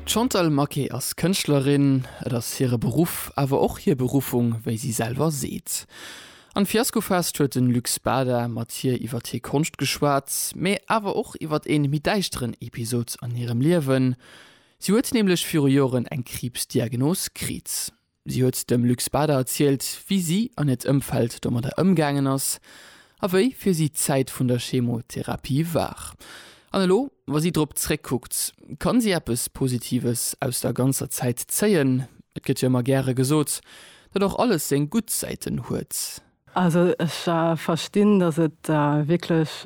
D'Chantal Maquet ass Kënschtlerin. Et ass hire Beruff, awer och hir Beruffung, wéi si selwer seet. Am Fiaskofest huet de Luc Spada mat hir iwwert hir Konscht geschwat, mee awer och iwwert ee méi däischteren Episod an hirem Liewen. Si huet nämlech viru Joren eng Kriibsdiagnos kritt. Si huet dem Luc Spada erzielt, wéi si an hiert Ëmfeld domadder ëmgaangen ass a wéi fir si d'Zäit vun der Chemotherapie war. An elo, wa si drop zréckkuckt, kann si eppes Positives aus der ganzer Zäit zéien. Et gëtt jo ëmmer gäre gesot, datt och alles seng gutt Säiten huet. Also ech verstinn, datt et wierklech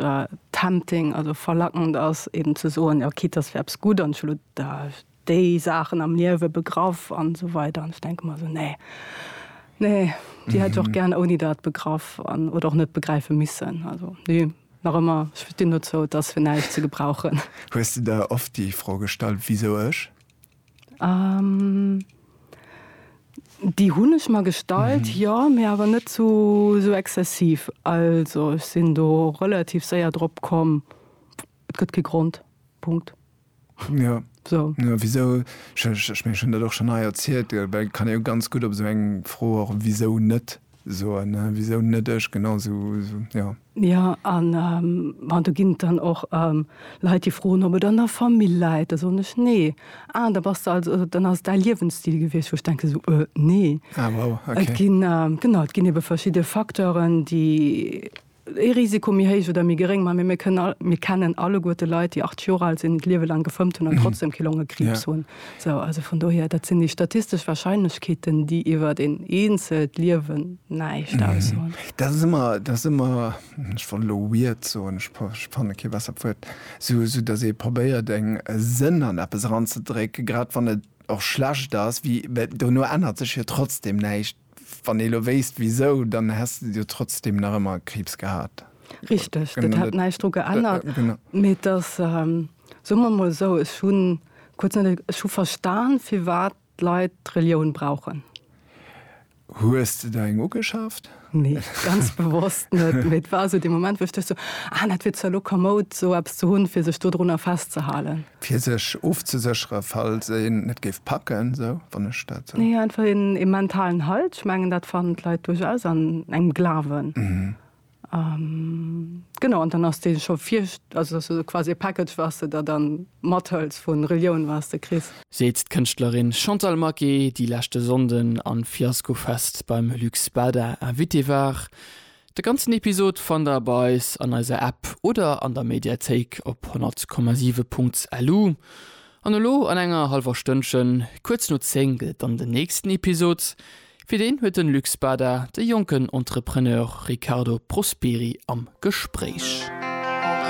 tempting, also verlackend ass, eben ze soen, jo quitte datt fir eppes gutt an ech hu elo déi Saachen am Liewe, Begraff an esou weider, an ech denke mer esou, nee, nee, déi hätt ech och gären ouni dat begraff an oder och net begräife missen. Also nee, nach ëmmer, ech stinn dozou, et ass fir näischt ze gebrauchen. Hues de der oft déi Fro gestallt, Wisou ech? Déi hunn ech mer gestallt, jo, mee awer net sou exzessiv. Also ech sinn do relativ séier drop komm, et gëtt kee Grond, Punkt. Jo, wisou? Ech mengen, ech hunn dat och schonn hei erzielt, well et kann ee jo ganz gutt op esou eng Fro och wisou net soen, wisou net ech, genau sou, jo. Jo, an bon, do ginn et dann och Leit, déi froen, ob et an der Famill läit. Da soen ech, Nee. Ah, da bass de also, dann ass et däi Liewensstil gewiescht. Wou ech denken esou, Nee. Ah, wow, okay. Et ginn, genau, et ginn ebe verschidde Facteuren, déi. ee Risiko méi héich oder méi geréng, mä mir kënnen all, mir kennen alleguer de Leit, déi 80 Joer al sinn, d'Liewe laang gefëmmt hunn an trotzdem kee Longekriibs hunn. Sou, also vun dohier, dat sinn déi statistesch Warscheinlechkeeten, déi iwwert een eenzelt Liewen näischt aussoen. Dat ass ëmmer, dat ass ëmmer, ech wollt elo weird soen, ech fanne kee bessert Wuert, sou, sou datt ee probéiert eng, e Sënn an eppes eranzedrécken, grad wann et och schlecht ass, wéi, mä dono ännert sech jo trotzdem näischt. Wann ee lo wéisst wisou, dann häss de jo trotzdem nach ëmmer Kriibs gehat. Richteg, dat hätt näischt dru geännert. Mee et ass, soe mer emol esou, ech hu kuerz net, ech hu verstan, firwat d'Leit d'Relioun brauchen. Hues de der eng ugeschaaft? Nee, ganz bewosst net. Mee et war esou dee Moment, wou ech duecht esou, ah, dat wier zwar lo komoud, esou eppes ze hunn, fir sech dodrunner festzehalen. Fir sech ofzesécheren, falls een et géif packen, sou, wann ech dat sou. Nee, einfach een, ee mentalen Halt. Ech mengen, dat fannen d'Leit duerchaus an engem Glawen. Genau, an dann ass dee scho vir, also dass du esou quasi e Package, wat s de der dann mathëls vu Relioun, wat s de kriss. Seet d'Kënschtlerin Chantal Maquet, déi leschte Sonnden am Fiasco Fest beim Lux Bada Invitée war. De ganzen Episod fannt der bei eis an eiser App oder an der Mediathéik op 100,7.lu. An elo an enger hallwer Stënnchen, kuerz no 10, gëtt et dann den nächsten Episod. Fir deen huet den Luc Spada de jonken Entrepreneur Riccardo Prosperi am Gespréich.